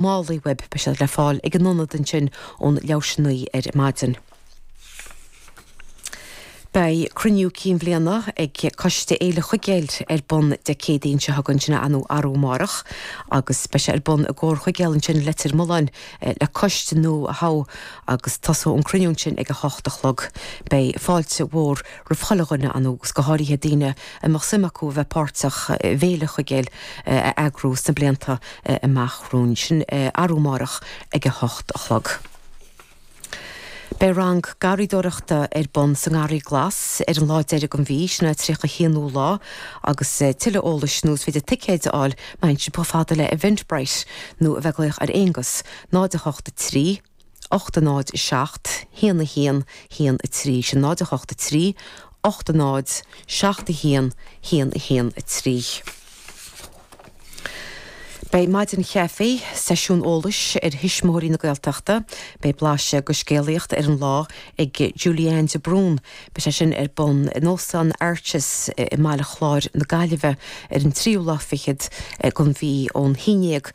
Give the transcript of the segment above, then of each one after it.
Málaí oibre beidh siad le fáil ag an ionad ansin ón leathuair tar éis 9 ar maidin. Beidh cruinniú cinn bhliana ag Coiste Fhéile Chuigéil ar bun Dé Céadaoin seo chugainn, sin arú amárach, agus beidh sé ar bun i gComhar Chuigéil ansin i Leitir Mealláin le coiste nua a thoghadh agus tosóidh an cruinniú ansin ag a hocht a chlog. Beidh fáilte mhór roimh chuile dhuine ann agus go háirithe daoine a mbeadh suim acu a bheith páirteach i bhFéile Chuigéil a eagrú sna blianta amach romhainn. Sin arú máireach ag a hocht a chlog. Beidh rang garraíodóireachta ar bun sa nGarraí Glas ar an lá deireanach den mhí, sin an tríocha a haonú lá, agus tuilleadh eolais nó is féidir ticéid a fháil ar Eventbrite nó a bheith ag glaoch ar Aonghus, náid a hocht a trí, ocht a náid a seacht haon a haon haon a trí. Sin náid a hocht a trí, ocht a náid, seacht a haon, haon a haon a trí. Beidh Maidin Chaife, seisiún eolais ar Thuismitheoirí na Gaeltachta. Beidh blaiseadh go scéalaíocht ar an lá ag Julianne de Brún. Beidh sé sin ar bun in Óstán Arches i mBaile Chláir na Gaillimhe ar an tríú lá fichead gon mhí ón haon déag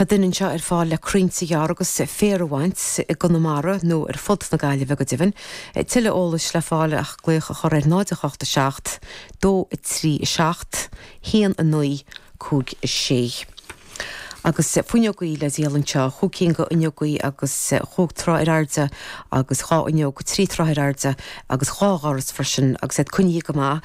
Tá duine anseo ar fáil le croinnte a ghearradh agus féar a bhaint, i gConamara nó ar fud na Gaillimhe go deimhin. Tuilleadh eolais le fáil ach glaoch a chur ar 0 8 7 2 3 7 1 9 5 6. Agus fuinneogaí le díol anseo, chúig cinn go fhuinneogaí agus chúig troigh ar airde agus dhá fhuinneog trí troithe ar airde agus dhá dhoras freisin agus iad coinnithe go maith.